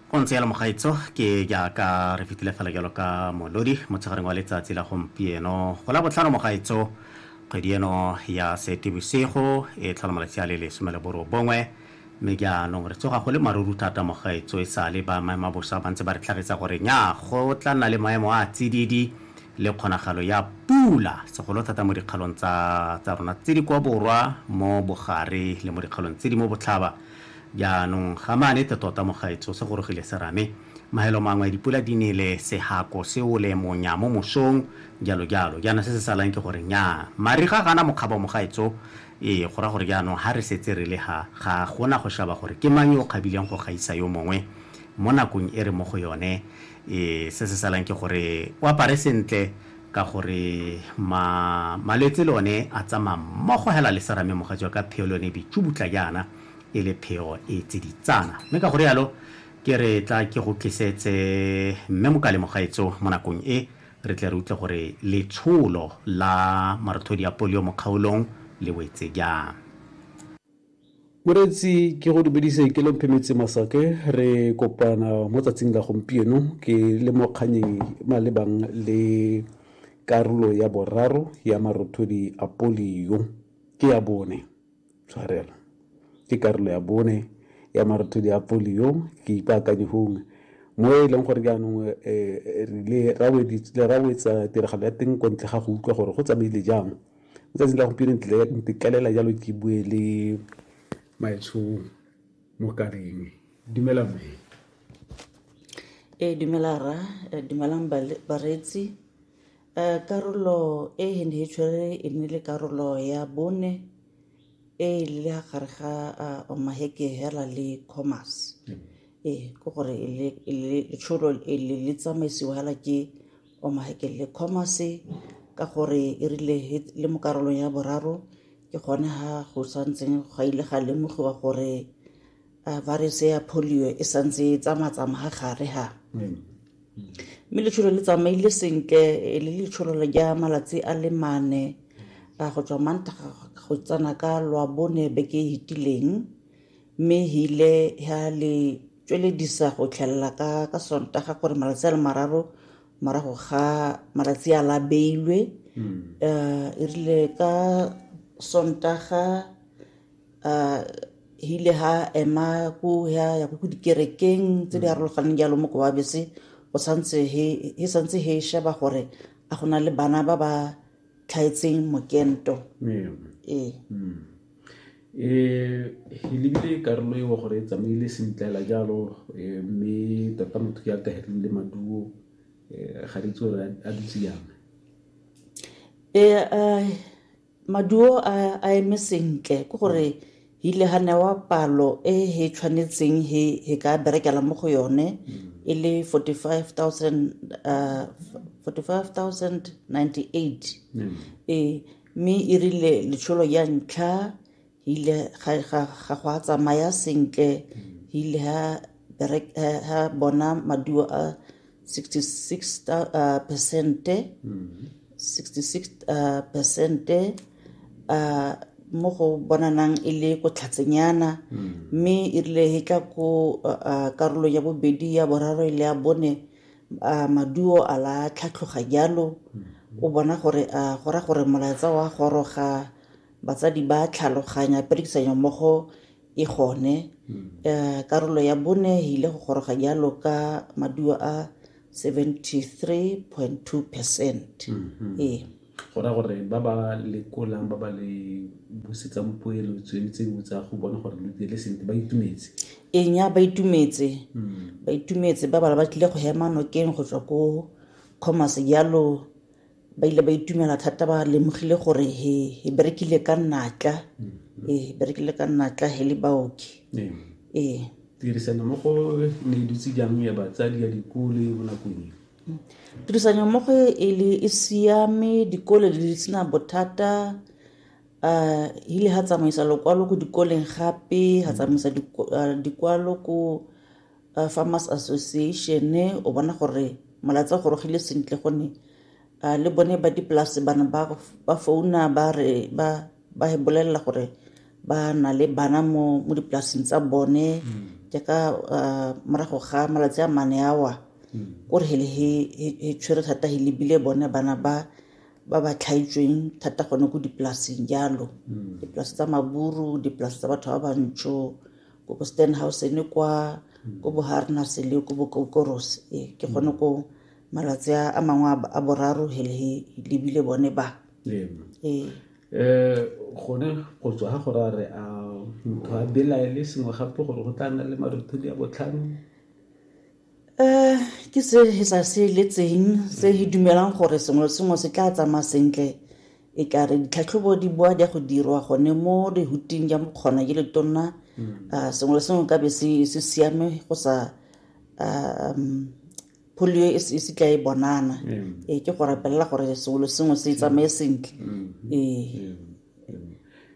go ntse yalo mogaitso ke jaaka re fetile fela jalo ka molodi motshegareng wa letsatsi la gompieno go la botlhano mogaitso kgwedi eno ya sete bosigo e tlhola malatsi a le lesome le borobongwe mme jaanong re tsoga go le maruru thata mogaitso e sale ba maemo a bosa ba ntse ba re tlhagisa gore nya go tla nna le maemo a tsididi le kgonagalo ya pula segolo thata mo dikgalong tsa rona tse di kwa borwa mo bogare le mo dikgalong tse di mo botlhaba Jaanong ga maane te tota mogaetsho se gorogile serame. Maelo mangwe dipula di nele, sehako se ole monya mo mosong, jalo jalo. Jaana se se salang ke gore nnyaa, mariga ga a na mokgabo mogaetsho. Ee, go raya gore jaanong ha re setse re le ha, ga go na go shaba gore ke mang yo o kgabileng go gaisa yo mongwe. Mo nakong e re mo go yone, ee, se se salang ke gore o apare sentle, Ka gore ma, malwetse le one a tsamaya mmogo hela le serame mogatsi wa ka, pheo le yone e bitšubutla jaana e le pheo e tsiditsana. Mme ka go rialo ke re tla ke go tlisetse Mme Mokalemo gaetsho mo nakong e, re tle re utlwe gore letsholo la marothodi a polio mo kgaolong le wetse jang. Moreetsi ke go dumedise ke lomphe metse masake re kopana mo tsatsing la gompieno ke le mo kganyeng malebang le karolo ya boraro ya marothodi a polio ke ya bone tshwarelo ke karolo ya bone ya marothodi a polio ke ipaakanye gongwe mo e leng gore jaanong um eh, eh, re ile ra wetsa tiragalo ya teng kwa ntle ga go utlwa gore go tsamaile jang Letsatsi la gompieno ntikalela jalo ke bue le maetsho mo kaleng dumela mme ee dumela rra dumelang bareetsi um karolo e ne e tshwere e ne le karolo ya bone e le ya gare ga maheke hela le commerce ee ke gore letsholo le tsamaisiwa hela ke wa mahekelele commerce ka gore e rile le mo karolong ya boraro ke gone ha go santseng ga ile ga lemogiwa gore uh, virus ya polio e santse e tsamatsama ga gare ha mm. mme letsholo le tsamaile sentle e le letsholo le ja malatsi a le mane a go tswa mantaga go tsena ka lwa bone beke e fetileng mme hile ha le tsweledisa go tlhelela ka ka sontaga gore malatsi a le mararo morago ga malatsi a la beilwe um e rile ka sontaga um hile ha ema ko ya ya ko dikerekeng tse di arologaneng jalo mo kowa bese go santse he he santse he sheba gore a go na le bana ba ba tlhaetseng mokento ee eh e lebile karolo eo gore e tsamaile sentlela jalo eh, mme tota motho ke ategegile le maduo eh, ga re tsore a dutse yang eh, eh maduo a eme sentle ke gore Hile ha newa palo e he tshwanetseng he he ka berekela mo go yone e le 45,098 ee mme e rile letsholo ya ntlha hile ga ga ga go a tsamaya sentle hile ha berek ha bona maduo a 66 ta- uh, percente 66 uh, percente uh, mo go bonanang e le ko tlhatsenyana mme e rile e tla ko uh, uh, karolong ya bobedi ya boraro e le ya bone uh, maduo a la tlhatlhoga jalo o bona gore uh, go ra gore molaetsa wa goroga batsadi ba tlhaloganya perekisanyo mmogo E gone, eh, karolo ya bone e ile go goroga jalo ka maduo a 73.2 percent mm-hmm. ee go ra gore ba ba lekolang ba ba le busetsang poelo tsone tse dingwe tsa go bona gore lo diele sentle ba itumetse enya ba itumetse hmm. ba itumetse ba bala ba tlile go hema nokeng go tswa ko commerce jalo ba ile ba itumela thata ba lemogile gore he he berekile ka natla mm-hmm. ee he berekile ka natla he le baoki ee, ee. tirisano mo go ne e dutse jang ya batsadi ya dikole mo nakong e mm. tirisano mo go e le e siame dikole di le sena bothata um ile ga tsamaisa lokwalo ko dikoleng gape ga tsamaisa dikwalo ko uh, farmers association o bona gore molatsa gorogile sentle gonne uh, le bone ba dipolase bana ba, ba founa ba re ba ba bolelela gore ba na le bana mo, mo dipolaseng tsa bone mm. jaaka uh, morago ga malatsi a mane awa mm. kore hele he, he, he tshwere thata he lebile bone bana ba ba ba tlhaitsweng thata gone ko dipolaseng jalo mm. dipolase tsa maburu dipolase tsa batho ba bantsho ko bo stenhouse ne kwa ko bo harners le ko bo kokoros ee ke gone ko malatsi a a mangwe a- a boraro he le he lebile bone ba Ee. ee um gone go tswa ga gore a re a motho a belaele sengwe gape gore go tla nna le marothodi a botlhano Eh, ke se he sa se letseng se he dumelang gore sengwe le sengwe se tla tsamaya sentle e ka re ditlhatlhobo di boa di ya go dirwa gone mo lehuting ya mokgona ye letonna mm. ah, sengwe le sengwe ka be se siame go sa ah, um, polio e se tla e bonana mm. ee ke go rapelela gore sengwe le sengwe se tsamaye sentle mm. ee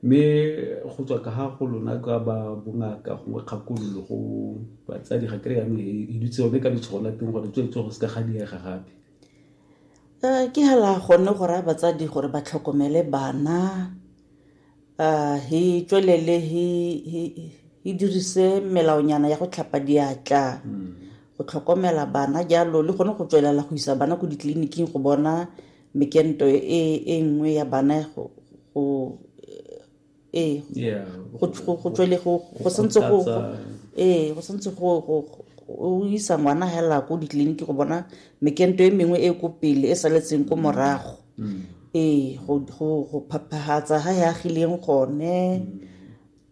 mme go tswa ka ga go lona ka ba bongaka gongwe kgakololo go batsadi ga kry yanong e dutse yone ka letshwao la teng gore tswetswe go se ka ga diega gape um ke hela gone go raya batsadi gore ba tlhokomele bana um he tswelele he dirise melaonyana ya go tlhapa diatla hmm. go tlhokomela bana jalo le gone go tswelela go isa bana ko ditleliniking go bona mekento e, e nngwe ya bana go ee go tswele go santse go ee go santse go o isa ngwana hela ko ditleliniki go bona mekento e mengwe e ko pele e saletseng ko morago mm. ee go phaphagatsa ga e agileng gone mm.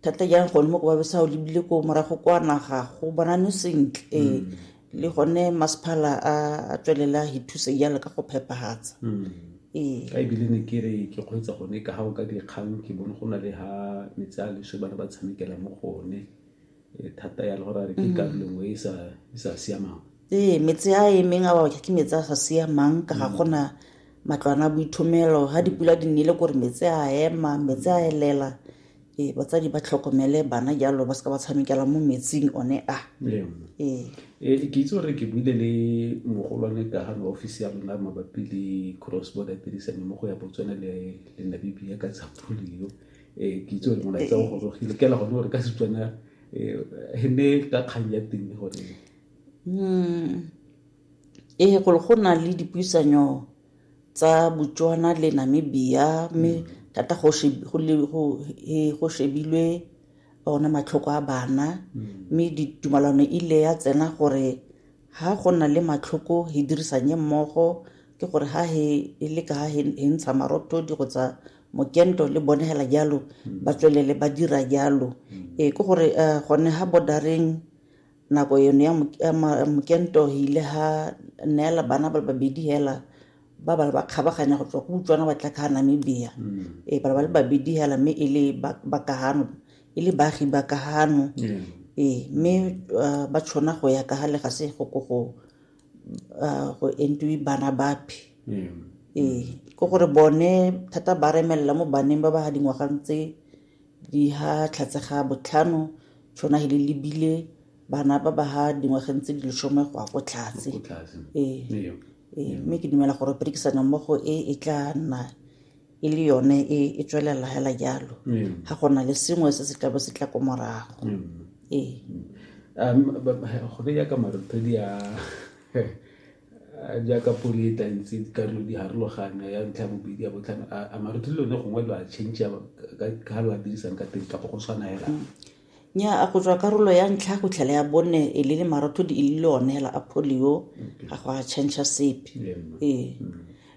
thata jang gone mo ko babesa o lebile ko morago kwa naga go bonane sentle ee mm. le gone masephala a tswelela he thusa jalo ka go phepagatsa hmm. ee. ka ebile ne ke re ke kgweetsa gone ka ga o ka dikgang ke bone go na le ga metsi a leswe bana ba tshamekela mo gone eh, thata ya le gore a re ke hmm. karolo nngwe e, e sa siamang ee metsi a emeng a baoke ke metsi a sa siamang ka ga hmm. gona matlwana a boithomelo ga dipula di nnile kore metsi a ema metsi a elela Ee, batsadi ba tlhokomele bana jalo ba seka ba tshamekela mo metsing one a ee e ke itse gore ke buile le mogolwane ka ga office ya rona mabapi le cross border tirisano mo go ya botswana le le namibia ka tsa polio um ke itse gore molaetsa o gorogile kela gone gore ka setswana um e ne ka kgang ya teng gore ee go le go na le dipuisanyo tsa Botswana le Namibia mme mm. thata go shebilwe ona matlhoko a bana mm. mme ditumalano e ile ya tsena gore ha go na le matlhoko he dirisanye mmogo ke gore ha he e le ka he ntsha marotho di go tsa mokento le bone hela jalo mm. ba tswelele ba dira jalo ee ke gore eh, gone ha bodareng Nako eno ya mokento e ile ha neela bana ba le babedi hela ba ba ba kgabaganya go tswa go utswana ba tla ka Namibia mm. e ba ba le babedi hela mme e le ba ka hano e le baagi ba ka hano e mme uh, ba tshwana go ya ka ga le ga se go go go uh, go entwe bana bapi e ko gore bone thata ba remelela mo baneng ba ba ga dingwagang tse Di ha Tlhatsega botlhano tšhona he le lebile bana ba ba ha dingwageng tse di leshome go ya ko tlhatse ee ee mme ke dumela gore perekisano mmogo e e tla nna e le yone e e tswelela hela jalo ga gona le sengwe se se tlabe se tla ko morago ee um gone yaka marothodi a Jaaka pono e tla ntse dikarolo di harologanya ya ntlha ya bobedi ya botlhano a mare di lone gongwe lo a change ka lo a dirisang ka teng kapo go tshwana hela nya a go tswa karolo ya ntlha go tlhela ya bone e le le marotho di e le one hela a polio ga go a change sepe ee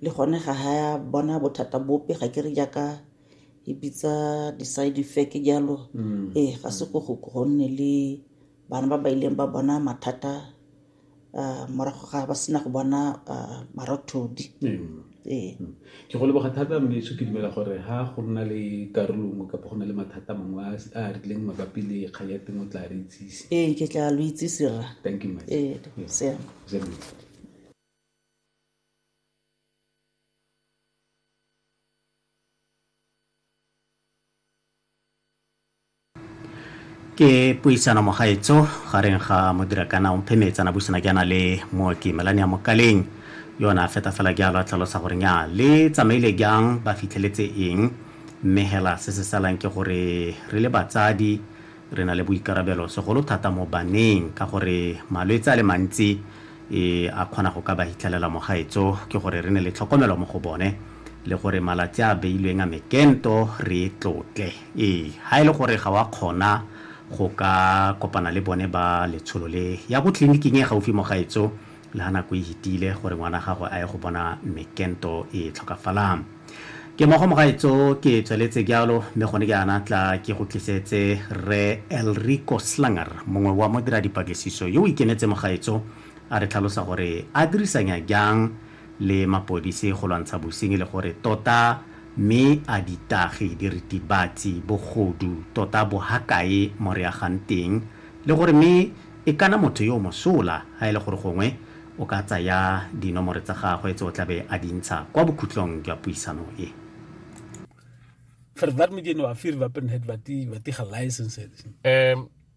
le gone ga ha ya bona bothata bope ga ke re jaaka e bitsa di-side effect jalo mm. ee ga se go gonne le bana ba ba ileng ba bona mathata um morago ga ba sena go bona um marothodi ee ke go leboga thata moleso ke dumela gore ha go nna le karolo nngwe kapa go na le mathata mangwe a a rileng mabapi le kgang ya teng o tla re itsise ee ke tla lo itsise rra thank you much ee Yeah. siame Zebra. ke puisano mogaetso gareng ga modirakana omphe meetsana buisana ke ana le mooki melane ya mokaleng yona feta fela jalo a tlhalosa gore nya le tsamaile jang ba fitlheletse eng mme hela se se salang ke gore re le batsadi re na le boikarabelo segolo thata mo baneng ka gore malwetse a le mantsi e a kgona go ka ba hitlhelela mogaetso ke gore re ne le tlhokomelo mo go bone le gore malatsi a beilweng a mekento re tlotle Ee, ha e le gore ga wa kgona go ka kopana le bone ba letsholo le, ya ko tleliniking e gaufi mogaetso le ha nako e hitile gore ngwana gago a ye go bona Mme Kento e tlhokafalang. Ke mogo mogaetso ke tsweletse jalo mme gone jaana tla ke go tlisetse Rre Elrico Slanger, mongwe wa modira dipatlisiso yo o ikemetse mogaetso a re tlhalosa gore a dirisanya jang le mapodisi go lwantsha bosenyi le gore tota mme a ditagi, diritibatsi, bogodu tota bo ha kae mo re agang teng le gore mme e kana motho yo o mosola ha e le gore gongwe o ka tsaya dinomore tsa gagwe tse o tlabe a di ntsha kwa bokhutlong jwa puisano e. Verwermedigen waarfir wapenheid wat die wat die gelicensed is. Ehm um,